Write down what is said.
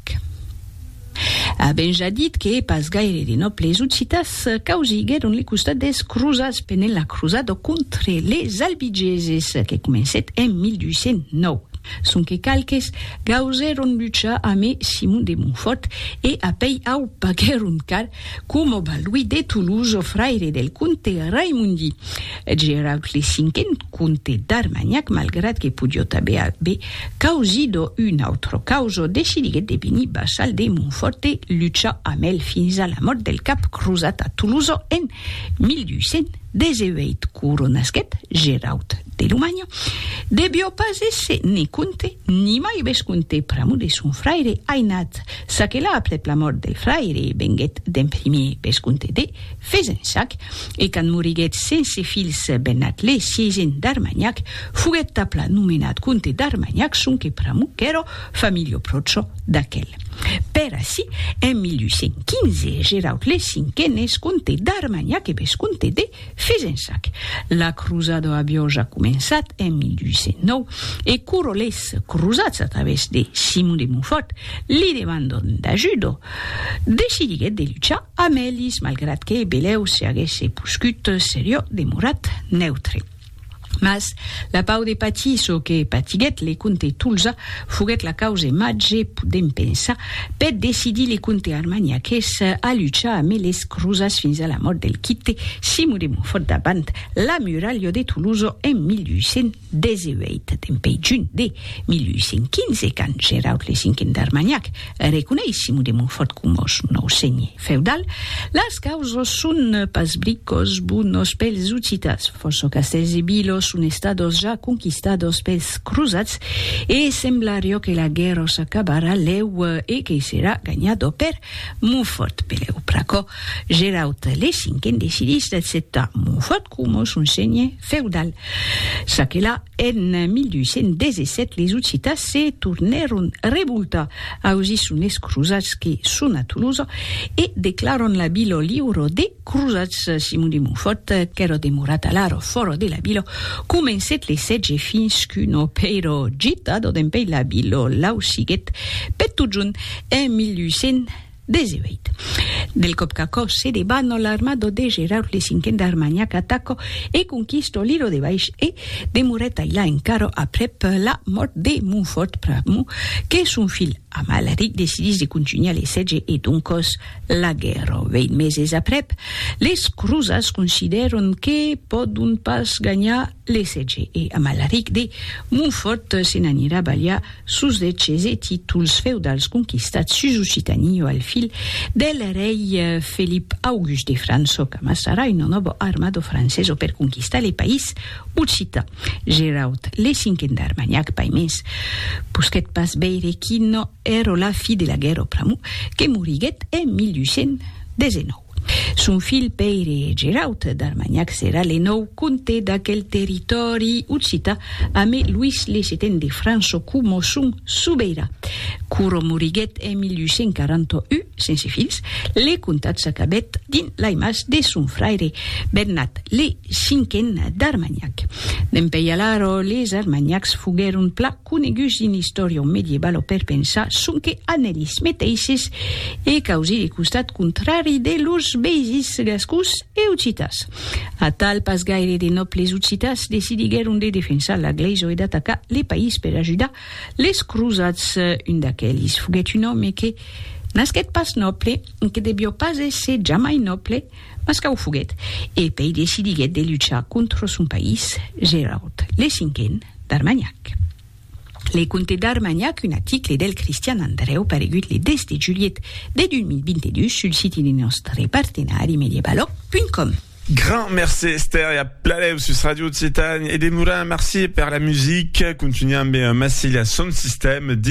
Ec. A ben ja dit que pas gaire de nòbles occitans causiguèron le costat des crosats pendent la crosada contre les albigeses que comencèt en 1209, sonque qualques gausèron luchar amé Simon de Montfòrt e apèi au paguèron car, coma Balduí de Toulouse, fraire del comte Raimondi Geraud le Cinquen, Comte d'Armagnac, malgrat que podiot aver aver causido un autre causo, decidiguèt de venir vassal de Montfòrt e luchar amb el fins a la mòrt del cap crosat a Tolosa en 1218. Coronasquèt Geraut de Lomanha, devió pas èsser ne comte ni mai vescomte pr'amor de son fraire ainat, çaquelà aprèp la mòrt del fraire venguèt d'en primier vescomte de Fezensac, e quand moriguèt sense filhs Benatlle sièisen d'Armagnac, foguèt tapla nomenat comte d'Armagnac sonque pr'amor qu'èra familio pròcho d'aquel. Per ací, en 1815, Gerautle Cinquen es comte d'Armagnac e vescomte de Fezensac. La crosada aviá ja començat en 1809, e corolhers crosats a travèrs de Simon de Montfòrt li demandant d'ajuda, decidiguèt de luchar Amelis, malgrat que Belèu se aguèsse poscut seriò, demorat neutre. Mas, la pau de patir çò que patiguèt le comte Tolza foguèt la cause màger, podèm pensar, per decidir le comte armagnaqués a luchar amé les crosats fins a la mòrt del quite Simon de Montfòrt davant la muralha de Tolosa en 1800. 18 dempè junh de 1815, quand Geraud le Cinquen d'Armagnac reconeis Simon de Montfòrt coma son nòu senhe feudal, las causas son pas bricòs bonos pels Occitas, fòrça castèls e vilas son estados ja conquistados pels crosats e semblarió que la guèrra s'acabarà lèu e que serà ganhada per Montfòrt. Pelèu pr'aquò, Geraud le Cinquen decidís d'acceptar Montfòrt, coma son senhe feudal. Çaquelà, en 1217 les Occitans se tornèron revoltar ausi son es crosats que son a Tolosa e declaran la vila liura des crosats. Simon de Montfòrt, qu'èra demorat alara fòra de la vila, comencèt le sètge fins qu'una pèira gitada dempèi la vila lausiguèt per totjorn en 1200. 18. Del còp qu'aquò se debat, no l'armado de Geraud le cinquen d'Armanhac ataco e conquisto l'ilo de Baish e demorèt ailà encara aprèp la mòrt de Montfòrt pr'amor que son filh Amalric decidís de contunhar le sètge e doncòs la guèrra. Vèint meses aprèp, les crosats considèron que pòdon pas ganhar L'ESG e Amalaric de Montfòrt se n'anirà balhar sos deches e títols feudals conquistats sus Occitanie o al fil del rei Felip August de França o qu'amassarà una nòva armada francesa per conquistar le país occitan. Geraud le Cinquen d'Armagnac Paimens posquèt pas veire quina èra la fi de la guèrra pr'amor que moriguèt en 1819. Son filh Pèire Geraut d'Armanhac serà le nòu comte d'aquel territòri occità amé Luís le Seten de França coma son sobeirà. Quora moriguèt en 1841 sense filhs, le comtat s'acabèt dins lai mas de son fraire Bernat le Cinquen d'Armanhac. Dempèi alara les Armanhacs foguèron pla. coneguts dins l'istòria o medievalo o per pensar sonque an elis meteisses e causir le costat contrari de lors veisins gascons e occitas. Atal, pas gaire de nòbles occitas decidiguèron de defensar la glèisa e d'atacar le país per ajudar les crosats. Un d'aquelis foguèt un òme que nasquèt pas nòble, que devió pas èsser jamai nòble, mas qu'a o foguèt, e pei decidiguèt de luchar contra son país, Geraud le Cinquen. d'Armagnac. Le Comte d'Armagnac, un aticle del Cristian Andrèu paregut le 10 de julhet de 2022 sul siti de nòstre partenari mediebaloc.com. Grand mercé Esther e a Pladèu sus Radio Occitània e de Morin, merci per la musica, continuam ben Massilia son sistèm dins.